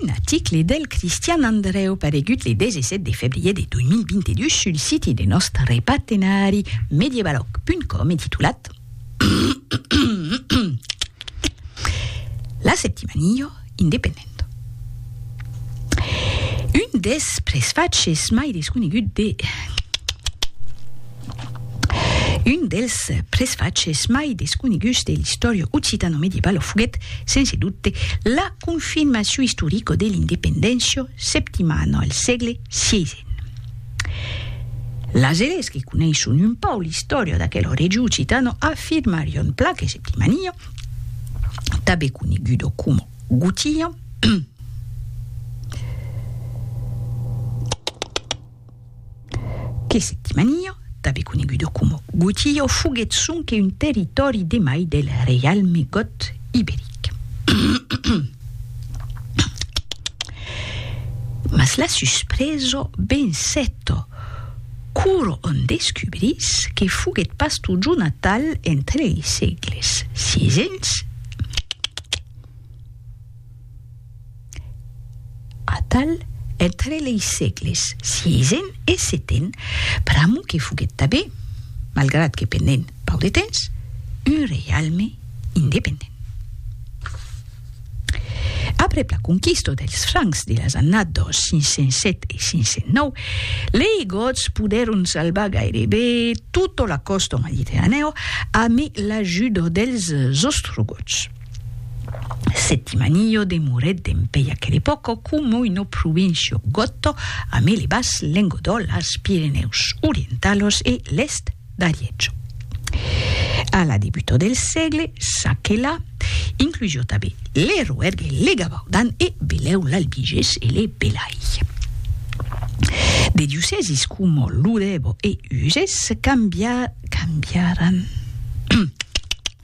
Un article del Cristian Andreu paregut le 17 de febrier de 2022 sul siti de nòst repartenari medievaloc.com e titulat La Septimanio independent. Un des presfatges mai desconegut de Un dels presfachs mai desconeguts de l'istòria occitano-medievalo foguèt, sense dubte, la confirmacion istorica de l'independéncia septimana al sègle xvii. Las eles que coneisson un pauc l'istòria d'aquel regiu occitano afirmarion plan que Septimania, tanben coneguda coma Gotia, que se dimanió, tanben conegudo coma Gotió, foguèt sonque un territòri de mai del reialme gòt iberic. Mas la susprèso vencèt quora òm descubrís que foguèt pas totjorn atal entre li sègles xvi e xvi. Atal, entre lei sègles siéisen e seten, pr'amo que foguèt tabé, malgrat que pendent pauc de temps, un reialme independent. Aprèp la conquista dels Francs de las annadas 507 e 509, lei Gots podèron salvar gairebe tota la còsta mediterranèa amé l'ajuda dels Ostrogots. Settimanillo demorèt dempèi aquel epòco coma una província gòto a mele bas Lengodò, las Pirenèus Orientalos e l'èst d'Ariètjo. A la debutò del sègle s'aquela inclusió tanben le Roèrgue, le Gavaudan e belèu l'Albigés e le Belai. De diocèsis coma Lodèvo e Uzès cambiaràn.